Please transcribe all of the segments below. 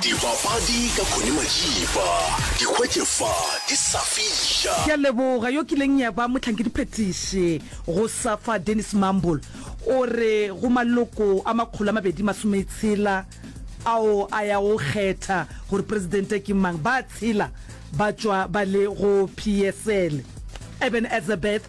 Dipapadi ka Connie Majiba, di hwetše fa di sa fiša. Ke a leboga. Yo kileng ya ba mohlankediphetiši go Safa, Dennis Mumble, o re go maloko a makgolo a mabedi masometshela ao a yago go kgetha gore presidente ke mang, ba tshela ba tšwa ba le go PSL. Eben Etzebeth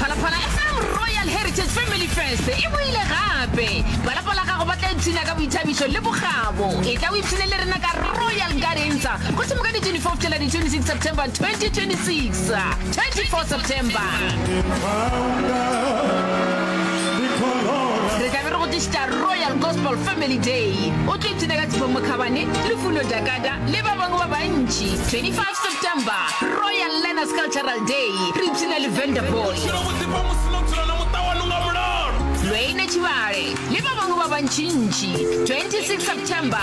Phalaphala FM Royal Heritage Family Fest e boile gape. Ba lapa la gago ba tla ipshina ka boithabišo le bokgabo. E tla o ipshine le rena ka Royal Gardens go thoma ka di 24 fihlela di 26 September 2026. 24 September re tla be re go tlišitša Royal Gospel Family Day. O tlo ipshina ka Tshifo Mokhabane, Lufuno Dakada le ba bangwe ba bantši. 25 September, Royal Learners Cultural Day, re ipshina le Vanderbilt. Lweine Tshivhale le ba bangwe ba bantšintši, 26 September,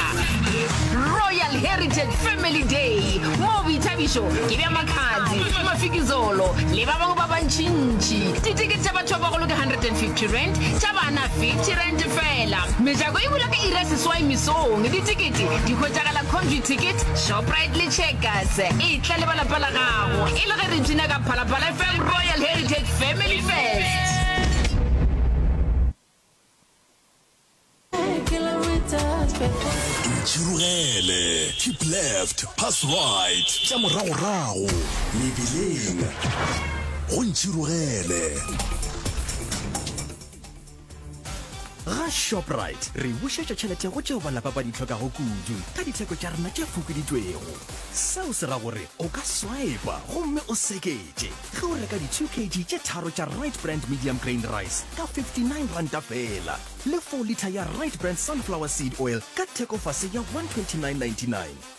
Royal Heritage Family Day, moo boithabišo ke bja Makhadzi, Mafikizolo le ba bangwe ba bantšintši. Ditikete tša batho ba bagolo ke R150, tša bana R50 feela. Mejako e bula ka iri ya seswai mesong. Ditikete di hwetšagala Comvuticket, Shop. Bradley Checkers e tla le ba lapa la gago e le ge re tsina ka Phalaphala FM Royal Heritage Family Fest. Ntšhirogele, keep left, pass right, tša moragorago, mebileng, go ntšhirogele. ga shoprite re bušetša tšhelete go tšeo balapa ba di tlhokago kudu ka ditheko tša rena tše fokoditšwego seo se ra gore o ka swipa gomme o seketše ge o reka di-2 kg tše tharo tša right brand medium grain rice ka 59 ranta fela le 4 liter ya right brand sunflower seed oil ka thekofase ya 129.99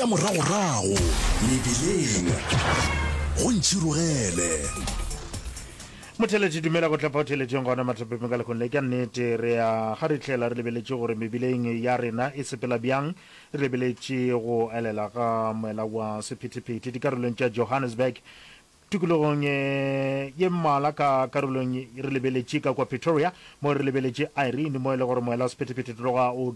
Tša moragorago mebeleng go ntšhirogele. Motheletši, Dumela go tla fao theletšeng gona mathopeng ka lekgong le. Ka nnete, re a kgarihlela re lebeletše gore mebeleng ya rena e sepela bjang. Re lebeletše go elela ga moela wa sephethephethe dikarolong tša Johannesburg, Tikologong ye mmalwa ka karolong re lebeletše ka kua Pretoria, mo re lebeletše Irene, mo e lego gore moela wa sephethephethe tloga o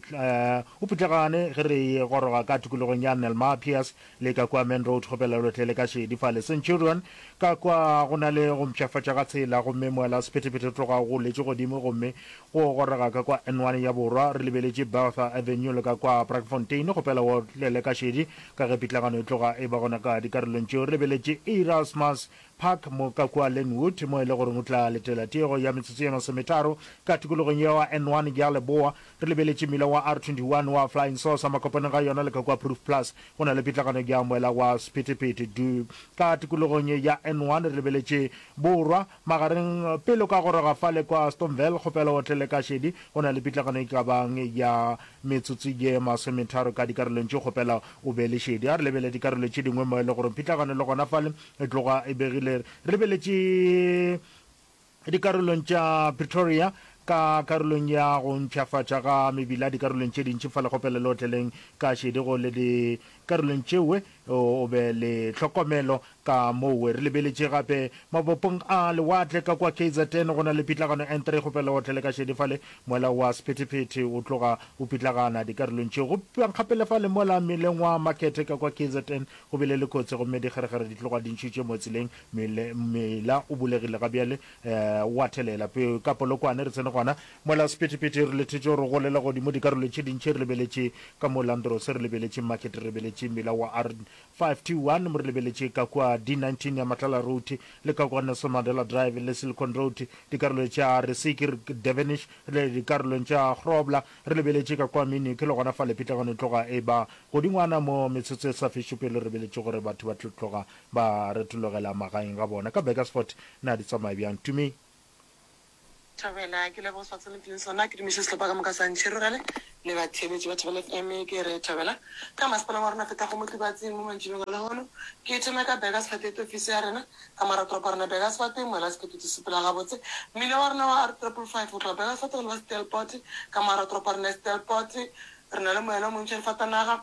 o putlegane ge re e goroga ka tikologong ya Nelmar Piers le ka kua Main Road go Belelotle le ka šedi fa le Centurion. Ka kwa go na le go mpšhafatša ga tsela gomme moela wa sephethephethe o tloga o goletše godimo gomme go goroga ka kua N1 ya borwa re lebeletše Bertha Avenue le ka kua Braakfontein go pela World le ka šedi Ka ge pitlagano e tloga e ba gona ka dikarolong tšeo, re lebeletše Erasmus Park mo ka kua Lynnwood, mo e le goreng o tla letela tiego ya metsotso ye masometharo ka tikologong ya wa N1 ya leboa. Re lebeletše mmila wa R21 wa Flying Saucer makopaneng ga yona le ka kua Proof Plus. Go na le pitlagano ya moela wa Sephethephethe du ka tikologong ya N1. Re lebeletše borwa. Magareng, pele o ka goroga fale kwa Astonville, kgopela o tle le kašedi. Go na le pitlagano e ka bang ya metsotso ye masometharo ka dikarolong tše. Kgopela o be le šedi. A re lebele dikarolo tše dingwe mo e le gore pitlagano le gona fale e tloga e begile. Re lebeletše dikarolong tša Pretoria ka karolong ya go mpshafatša ga mebila dikarolong tše dintši fale. Kgopela le otleleng kašedi go le dikarolong tšewe O be le tlhokomelo ka mowe. Re lebeletše gape mabopong a lewatle ka kua KZN. Go na le pitlagano e ntra e kgopela o tle le ka šedi fale. Moela wa sephethephethe o tloga o pitlagana dikarolong tše. Go pipiwang gape le fale mola mmileng wa Makhethe ka kua KZN go bile le kotsi gomme dikgeregere di tloga di ntšhitše mo tseleng. Mmila o bulegile ga bjale, o a thelela. Ka Polokwane re tsene gona. Mola sephethephethe re lethetše gore o golela godimo dikarolong tše dintši re lebeletše ka mo Landros, re lebeletše Market, re lebeletše mela wa R521, mo re lebeletše ka kua D19 ya Matlala Road le ka kua Nelson Mandela Drive le Silicon Road, dikarolong tša Reseker, Devenish le dikarolong tša Grobler, re lebeletše ka kua Minuk le gona fale pitlagano e tloga e ba godingwana mo metsotso e sa fešo pele re lebeletše gore batho ba tlo tloga ba retologela magaeng ga bona. Ka Burgersfort na di tsamaya bjang, Tumi? Thobela, ke leboga sebaka se le mphileng sona. Ke dumiše sehlopha ka moka sa Ntšhirogele le batheeletši ba Thobela FM. Ke re Thobela ka masepaleng wa rena feta go Motlibatsing mo mantšibeng a lehono. Ke thome ka Burger Sefate ete ofisi ya rena ka mor'a toropo ya rena Burger Sefate, moela sekete di sepela gabotse. Mmila wa rena wa R triple five go tloga Burger Sefate go leba Stelpot ka mor'a toropo ya rena Stelpot. Re na le moela o montši re fatanaga.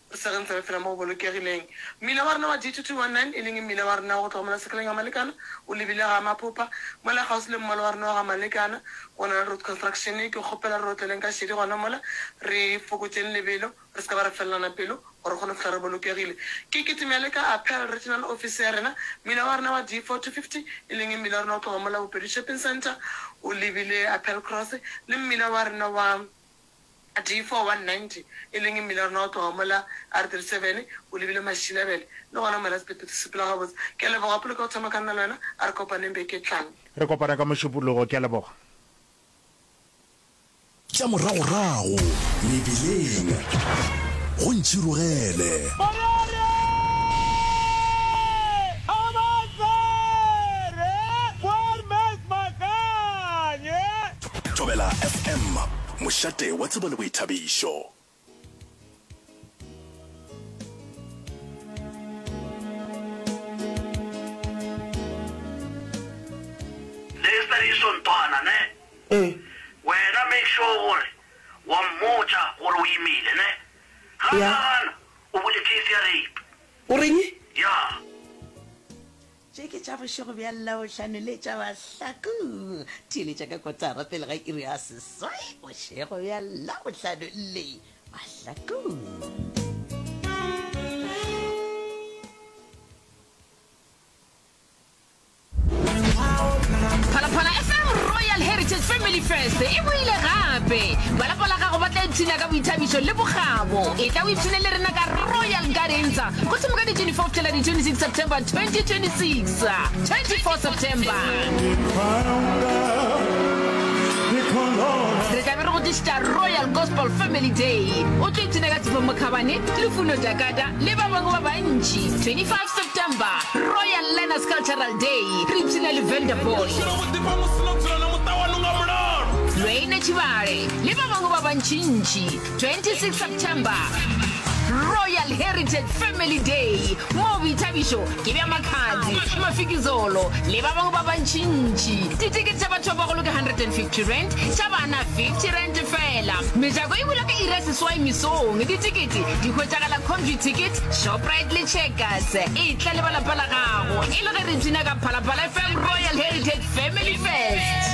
Se re ntse re phela mo go bolokegileng, mmila wa rena wa D229, e leng mmila wa rena wa go tloga mola Sekeleng ga Malekana o lebile ga Maphopa, mola kgauswi le mmalo wa rena wa ga Malekana, go na le Road Construction. Ke kgopela re otleleng ka šedi gona mola, re fokotšeng lebelo, re se ka ba ra felelana pelo, gore re kgone go fihla re bolokegile. Ke kitimele ka Apparel Regional Office ya rena, mmila wa rena wa D4250, e leng mmila wa rena go tloga mola Bopedi Shopping Centre o lebile Apparel Cross, le mmila wa rena wa. A tee four one ninety, e leng mmila wa rena wa go tloga mola R thirty seven, o lebile Mašilabele. Le gona mola Sephetho se sepela gabotse. Ke a leboga Pule ka go thoma ka nna le wena. A re kopaneng beke e tlang. Re kopana ka Mošupologo. Ke a leboga. Tša moragorago mebileng go ntšhirogele. Morere! Kgabatsere! Boermans Makanye! Thobela FM, mošate wa tsebo le boithabišo. Lesediso nthwana ne wena make sure gore wa mmotša gore o imile ne ga ka gana o bule case ya rape. O reng? Yeah. Tše ke tša bošego bja Labohlano le tša Mahlaku. Theeletša ka kotara pele ga iri ya seswai bošego bja Labohlano le Mahlaku. First e boile gape balapa la gago ba tla ipshina ka boithabišo le bokgabo e tla o ipshine le rena ka royal gardensa Go thoma ka di 24 fihlela di 26 September 2026. 24 September. Re tla be re go tlišitša Royal Gospel Family Day. O tlo ipshina ka Tshepo Mokhabane, Lufuno Jakata le ba bangwe ba bantši. 25 September. Royal Learners Cultural Day. Re ipshina le Venda Boy. Lweine Tšhibale le ba bangwe ba bantšintši. 26 September Royal Heritage Family Day mo boithabišo ke bja makhadzi mafikizolo le ba bangwe ba bantšintši ditikete tša batho ba bagolo ke 150 rand tša bana 50 rand fela mejako e bula ka iri ya seswai mesong ditikete di hwetšagala comview ticket shoprite le checkers e tla le ba lapa la gago e le ge re tsina ka phalaphala fm royal heritage family fest